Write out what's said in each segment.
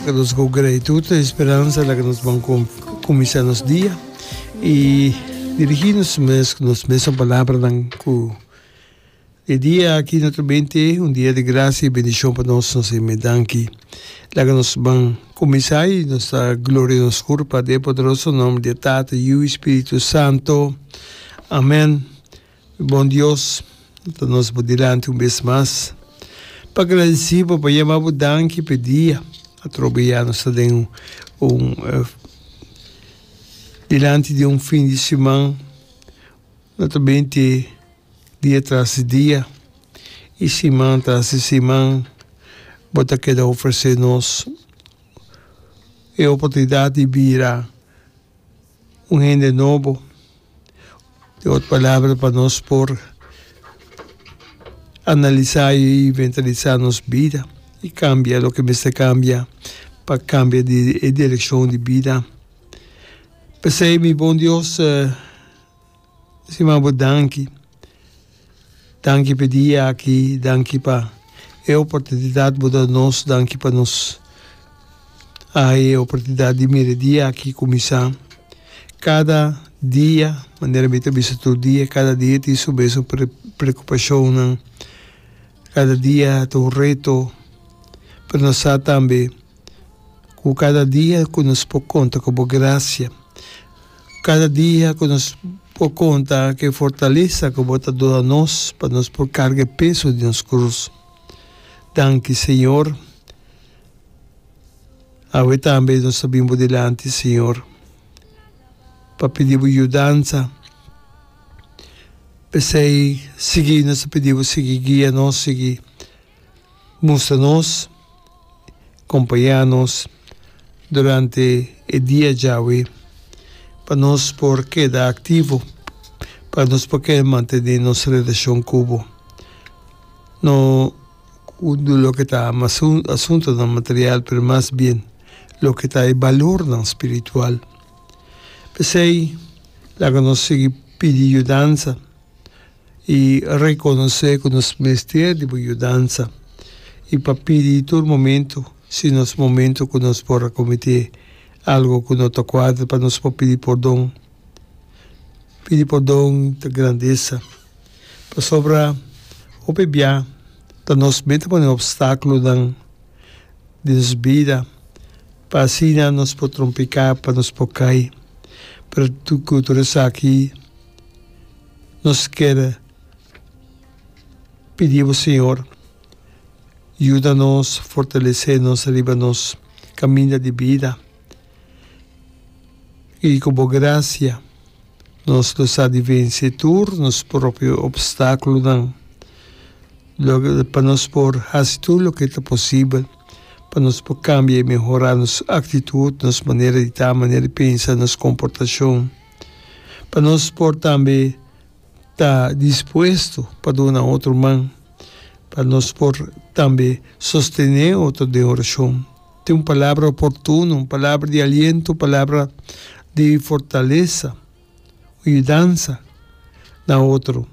Ka nos go gratitud ta e speransa laga nos ban kuminsá nos dia i dirigí nos mes ku nos mesun palabranan ku e dia aki no ta bini te un dia di grasia i bendishon pa nos, nos ta me danki. Laga nos ban kuminsá i nos ta gloria nos kurpa den e poderoso nomber di e Tata, Yu i Spiritu Santo. Amèn. Bon Dios, no ta nos bo dilanti un bes mas pa gradisí bo, pa yama bo danki pa e dia atrobe ya nos ta den un dilanti di un fin di siman no ta bini te dia tras di dia i siman tras di siman bo ta keda ofresé nos e oportunidat di bira. un hende nobo, di otro palabra pa nos por analisá i inventarisá nos bida i kambia loke mester kambia pa kambia e direkshon di bida. P'esei mi bon Dios Sima bo danki. Danki p'e dia aki, danki pa e oportunidat bo da nos, danki pa nos haña e oportunidat di mira e dia aki kuminsá. Kada dia, manera mi ta bisa tur dia, kada dia tin su mes un preokupashonnan, kada dia ta un reto, pero nos sa tambe ku kada dia ku nos por konta ku bo grasia. Kada dia ku nos por konta ku e fortalesa ku bo ta duna nos pa nos por karga e peso di nos krus. Danki, Señor. Awe tambe nos ta bin bo dilanti, Señor, pa pidi bo yudansa. P'esei, sigui nos ta pidi bo, sigui guia nos, sigui. Mustra nos, kompañá nos durante e dia djawe pa nos por keda aktivo, pa nos por keda mantené nos relashon ku bo. No ku loke ta asuntunan material pero mas bien loke ta e balornan spiritual. P'esei laga nos sigui pidi yudansa. i rekonosé ku nos mester di bo yudansa i pa pidi tur momentu si nos momentu ku nos por a kometé algu ku no ta kuadra pa nos por pidi pordon. Pidi pordon ta grandesa pasobra hopi bia ta nos mi ta pone opstákulonan den nos bida pa asina nos por trompiká pa nos por kai pero ku tur esaki. Nos kier pidi bo Señor, yuda nos, fortalesé nos riba nos caminda di bida, y cu bo gracia nos lo sa di venci tur nos propio obstaculonan, pa nos por haci tur loke ta posibel, pa nos por cambia y mehora nos actitud, nos manera di ta, manera di pensa, nos comportacion. pa nos por tambe ta dispuesto pa duna otro man, pa nos por tambe sostene otro den oracion, tin un palabra oportuno, un palabra di aliento, un palabra di fortalesa, un yudansa na otro.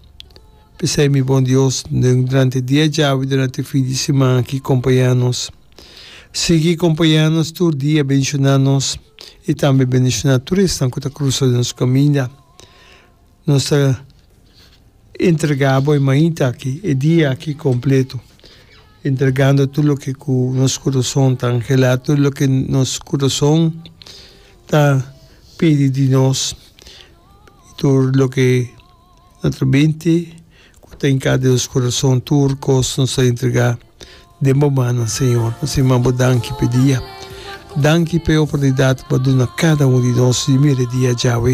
P'esei mi bon Dios, durante dia djabi, durante fin di siman aki, compaña nos. Sigui kompañá nos tur dia, bendishoná nos i tambe bendishoná tur esnan ku ta krusa den nos kaminda. Nos ta entregá bo e mainta aki, e dia aki kompletu, entregando tur loke ku nos kurason ta anhelá, tur loke nos kurason ta pidi di nos, tur loke. Na tur binti ku ta hinká den nos kurason tur kos nos a entregá den bo mannan Señor. Nos a yamá bo danki p'e dia. Danki p'e oportunidat ku bo a duna kada un di nos di mira e dia djawe.